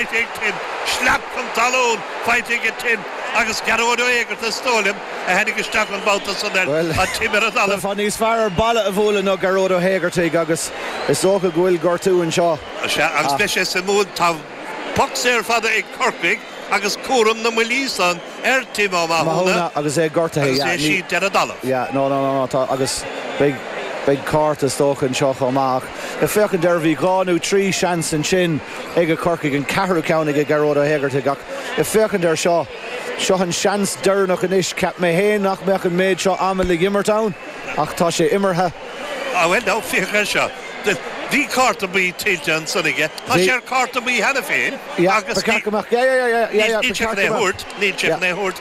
Faighte ag Tim. Slap chun talún faighte aige Tim agus Gearóid Ó hÉigeartaigh is dóigh liom a tháinig isteach an babhta san air. Bhuel, Tá Tim ar an talamh. Bheifeá níos fearr ar balla a bhualadh ná Gearóid Ó hÉigeartaigh agus is dócha go bhfuil gortú anseo. Sea, agus beidh sé suimiúil. Tá poc saor fada ag Corcaigh agus cúram na mbuillí san ar Tim Ó Mathúna agus é gortaithe. agus Yeah, é ní. siad ar an dtalamh. Yeah, no, no, no, no, tá. Agus beidh, beidh cárta is dócha anseo chomh maith ach. ag féachaint air, bhí dhá nó trí sheans ansin ag Corcaigh, an ceathrú ceann ag Gearóid Ó hÉigeartaigh ach ag féachaint air seo, seo an seans deireanach anois. Cheap mé féin nach mbeadh an méid seo ama le himirt ann ach tá sé imeartha. Á bhuel ná féach air seo, bhí cárta buí tuillte ansan aige, tá sé ar chárta buí cheana féin agus níl sé chun é a thabhairt.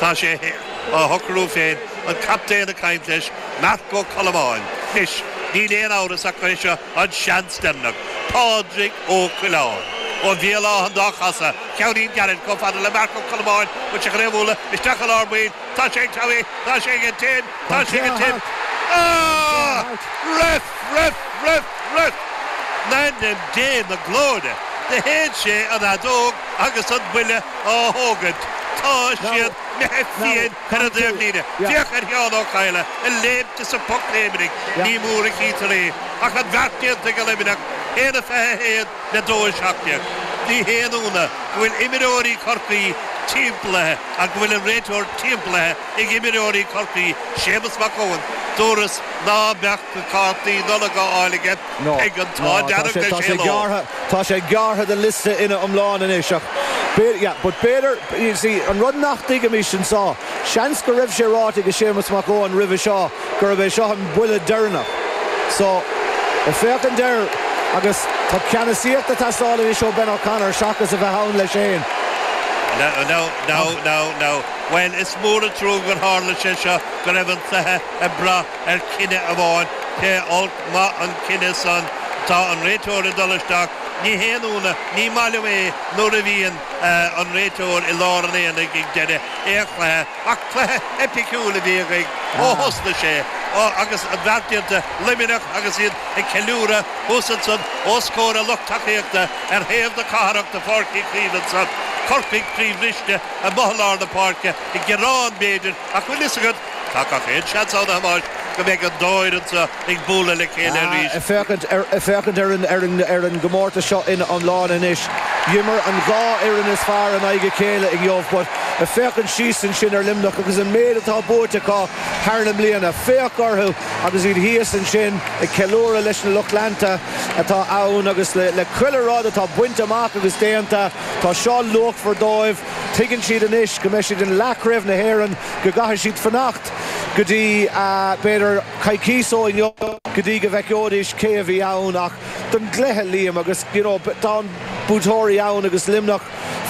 Tá sé á shocrú féin an captaen ag caint leis Marc Ó Colmáin. Anois, níl aon amhras ach gurb é seo an seans deireanach. Pádraig Ó Coileáin. Ó Bhéal Átha an dá Cheasaigh, ceannín gairid chomh fada le Marc Ó Colmáin an seachain fhéimúla isteach i lár baill. Tá sé ag Timmy. Tá sé aige Tim. Tá sé aige Tim. Ahh! Ref! Ref! Ref! Ref! In ainm Dé na glóire! Do shéid sé an fheadóg agus an buille á thógaint, tá siad imithe fiain ar an dtaobhlíne. Féach ar Sheán Ó Cadhla ag léimt is ag pocléimnigh, ní mór a chítear é, ach an bheart déanta ag Luimneach, 1:21 le 2:17. Ní haon ionadh go bhfuil imreoirí Chorcaí timpeallaithe ach go bhfuil an réiteoir timpeallaithe ag imreoirí Chorcaí, Séamus Mac Eoin, dúras ná beadh na cártaí Nollag á fháil aige ag an t-ádh dearg is é leo. Tá sé gearrtha den liosta ina iomlán anois ach b'fhéidir, you see, an rud nach dtuigimís anso, seans go raibh sé ráite ag Séamas Mac Eoin roimhe seo gurb é seo an buille deireanach. So, bhuel, ag féachaint air agus tá ceannasaíocht ag teastáil anois ó Ben O'Connor seachas a bheith ann leis féin. Now, now, now, now, now. Bhuel, is mór an trua gur tharla sé seo, go raibh an cluiche ag brath ar chinneadh amháin, pé olc maith an cinneadh san, tá an réiteoir ag dul isteach. Ní haon ionadh, ní maith leo é nuair a bhíonn an réiteoir i lár an aonaigh ag deireadh aon chluiche. Ach cluiche eipiciúil a bhí againn ó thosnaigh sé. Ó, agus an beart déanta, Luimneach agus iad ag ceiliúradh thuas ansan os comhair a lucht tacaíochta ar thaobh na cathrach de Pháirc Uí Chaoimh ansan. Corcaigh croíbhriste amuigh i lár na páirce, ag gearán b'fhéidir, ach bhfuil fhios agat, Tá gach aon seans ann, a Thomáis, go mbeidh an dá fhoireann so ag bualadh le chéile arís. Ag féachaint ar an gcomórtas seo ina iomláine anois, d'imir an dhá fhoireann is fearr in aghaidh a chéile inniu. Ag féachaint síos ansin ar Luimneach agus an méid atá buaite acu thar na mbliana, féach orthu agus iad thíos ansin ag ceiliúradh leis na lucht leanta atá ann agus le gach aon rud atá bainte amach agus déanta. Tá seo luachmhar dóibh. Tuigeann siad anois go mbeidh siad i leathchraobh na hÉireann, go gcaithfidh siad fanacht go dtí, b'fhéidir, coicís ó inniu go dtí go bhfeiceoidís cé a bheidh ann ach don gcluiche, a Liam, agus, you know, tá buaiteoirí ann agus Luimneach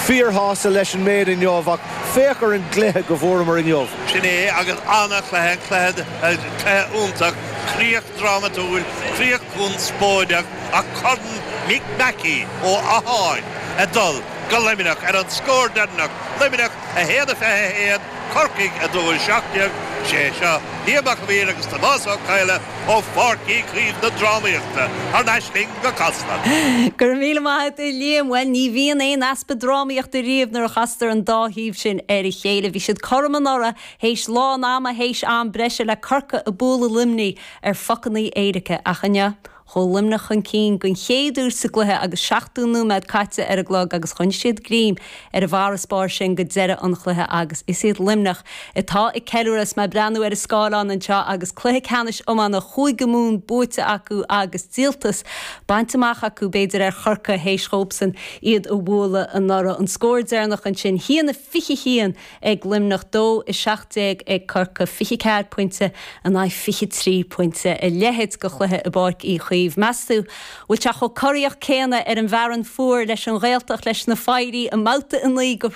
fíorshásta leis an méid inniu ach féach ar an gcluiche go bhfuaireamar inniu. Sin é agus an-chluiche, an cluiche, cluiche iontach, críoch drámatúil, críoch conspóideach ach Corn Mick Mackey ó Áth Eáin ag dul. go Luimneach ar an scór deireanach, Luimneach 1 21, Corcaigh 2 17. Is é seo Liam Mac a' Mhaoir agus Tomás Ó Cadhla ó Pháirc Uí Chaoimh na drámaíochta thar n-ais chughaibh go Casla. Go raibh míle maith agat, a Liam. Bhuel, ní bhíonn aon easpa drámaíochta riamh nuair a chastar an dá thaobh sin ar a chéile. Bhí siad cothrom anuraidh théis lán ama, théis am breise is Corcaigh ag bualadh Luimnigh ar phocannaí éirice, ach inniu, Chuaigh Luimneach chun cinn den chéad uair sa gcluiche agus 70 nóiméad caite ar an gclog agus choinnigh siad greim ar an bhfarasbarr sin go deireadh an chluiche agus is iad Luimneach atá ag ceiliúradh is mé ag breathnú ar an scáileán anseo agus cluiche ceannais iomána Chúige Mumhan buaite acu agus díoltas bainte amach acu b'fhéidir ar Chorcaigh théis dhóibhsan iad a bhualadh anuraidh. An scór deireanach ansin, 1 21. ag Luimneach 2-17 ag Corcaigh 24 pointe in aghaidh 23 pointe. A leithéid de chluiche i bPáirc Uí Chaoimh. Meastú bhfuil sé chomh corraíoch céanna ar an bhFearann Fuar don Ghaeltacht leis na fir i mbabhta a naoi go